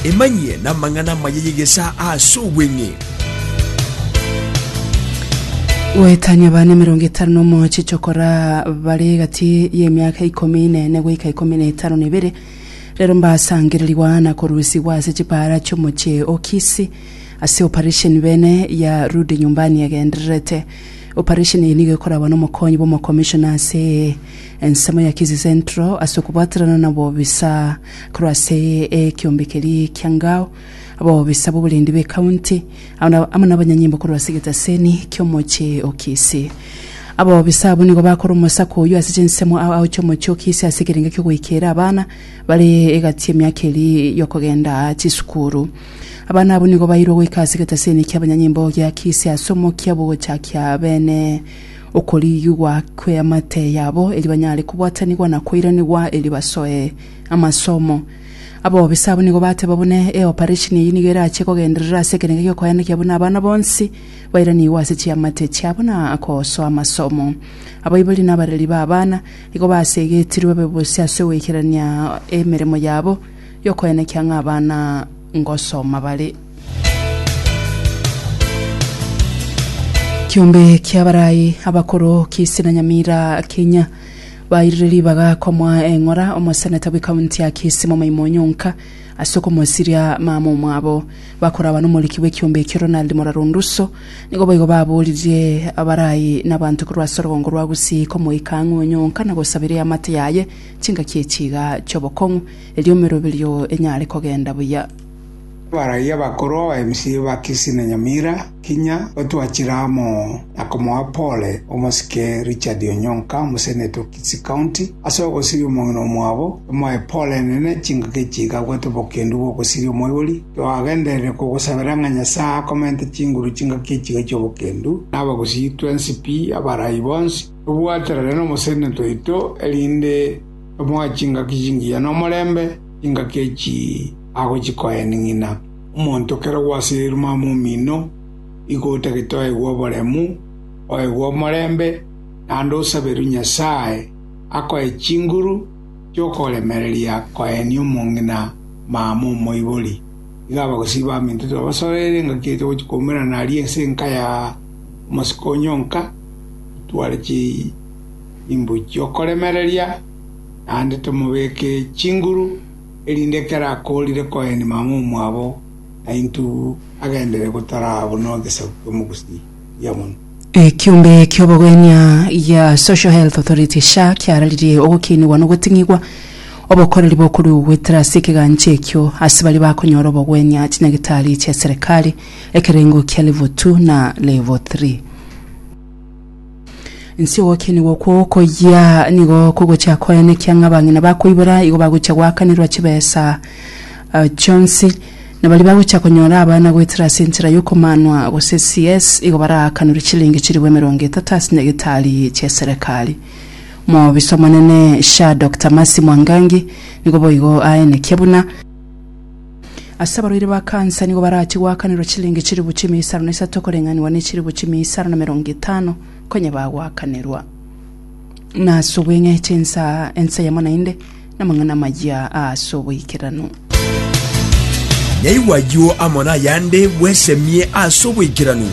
Emanyie namang'ana amaya y'egesaa ase obweng'e. Goetania abana emerongo etano na omoche chokora bare egati y'emiaka ikomi nene goika ikomi na etano na ebere, rero mbasangererigwa na korusigwa ase chipaara chi'omoche o Kisii ase oparesheni bene ya Rudi Nyumbani egendererete. Oparesheni eye nigo ekoragwa nomokonyi bw'omokomishona ase Ensemo ya Kisii Central ase okobwaterana na obobisa korwa ase ekiombe keria kia Ngao, abobisa b'oborendi b'ecounty amo nabanyanyimbo korwa ase egetaseni ki'omochie o Kisii. Abobisa abwo nigo bakore omosako oyio ase chinsemo aochie omochie o Kisii ase ekerengo ki'ogoikeera abana bare egati y'emiaka eria y'okogenda chisukuru. Abana abwo nigo bairwe goika ase egetaseni ki'abanyanyimbo gia Kisii ase omokia bw'ogochakia beene. Okorigigwa kw'eamate yabo, erio banyare kobwatanigwa na koiranigwa, erio basoe amasomo. Abobisa abwo nigo bateba buna eoparesheni eyio nigo erache kogenderera ase ekerengo gi'okoyandokia buna abana bonsi bairanigwe ase chiamate chiabo na gosoa amasomo. Abaibori na abareri b'abana nigo basegetirwe babe bosio ase goikerania emeremo yabo y'okoyandokia ng'a abana ngosoma bare. Kiombe kia barayi abakoro kisi na Nyamira kinya bairire ribaga komoa eng'ora omoseneta bwe kaunti ya Kisi momaimo onyonka ase okomosiria mama omwabo. Bakoraba nomoriki bwe kiombe ekio Ronald Moraro Nduso nigo boigo baboririe abarayi na abanto korwa ase orogongo rwa Gusii komoika ang'e onyonka na gosabera eamate yaye chingaki echiga chiobokong'u erio emeroberio enyare kogenda buya. Abaraia bakoro abaemisi ba Kisi na Nyamira kinya batwachire amo na komoa pore omosike Richard Onyonka, omoseneta o Kisii County, ase ogosiria omong'ina omwabo, emoe pore enene chingaki chigakwa tobokendu bw'ogosiria omoibori. Twagenderire kogosabera ng'a Nyasae akomente chinguru chingaki echiga chi'obokendu, na abagusii twensi pi, abarai bonsi, tobwaterane nomoseneta oito, erinde tomoe chingaki chingiya nomorembe chingaki echii. agochia koeneng'ina omonto kera gwasirirwe mama omino, igo otagete oegwe oboremu, oegwe omorembe, naende osaberwe Nyasae akoe chinguru chi'okoremereria koenia omong'ina mama omoibori. Iga abagosii baminto tibabasororere engaki eria togochia koumerana aria ense enka ya omosike onyonka, itware chimbu chi'okoremereria, naende tomobeke chinguru. erinde ekero akoorire koenda mama omwabo na intugu agendere gotaraba buna egesaku ki'omogusi buya mono. Ekiombe ki'obogwenia gia Social Health Authority, SHA, kiararirie ogokinigwa na ogoting'igwa obokoreri bokorua goetera ase ekegancho ekio ase baria bakonyora obogwenia chinyagitari chia serekari, ekerengo kia Level Two na Level Three. Inse ogokienerwa okwo okoyia nigo kogochia koene, ekiang'a abang'ina bakoibora igo bagochia goakanerwa chibesa ah, chionsi, na baria bagochia konyora abana goetera ase enchera y'okomanwa gose CS igo baraakanerwe chilingi chilifu emerongo etato ase nyagitari chi'eserekari. Omobisa omonene SHA Dokita Mercy Mwangangi nigo boigo aenekia buna. Ase abarwaire ba kansa nigo barachie goakanerwa chiliingi chilifu chimia isano na isato koreng'anigwa ne chilifu chimia isano na merongo etano konya bagoakanerwa. Na ase obweng'eche ensa ensa yamo naende namang'ana amayia aase oboikeranu. Nyaigwa ayio amo nayande bwesemie aase oboikeranu.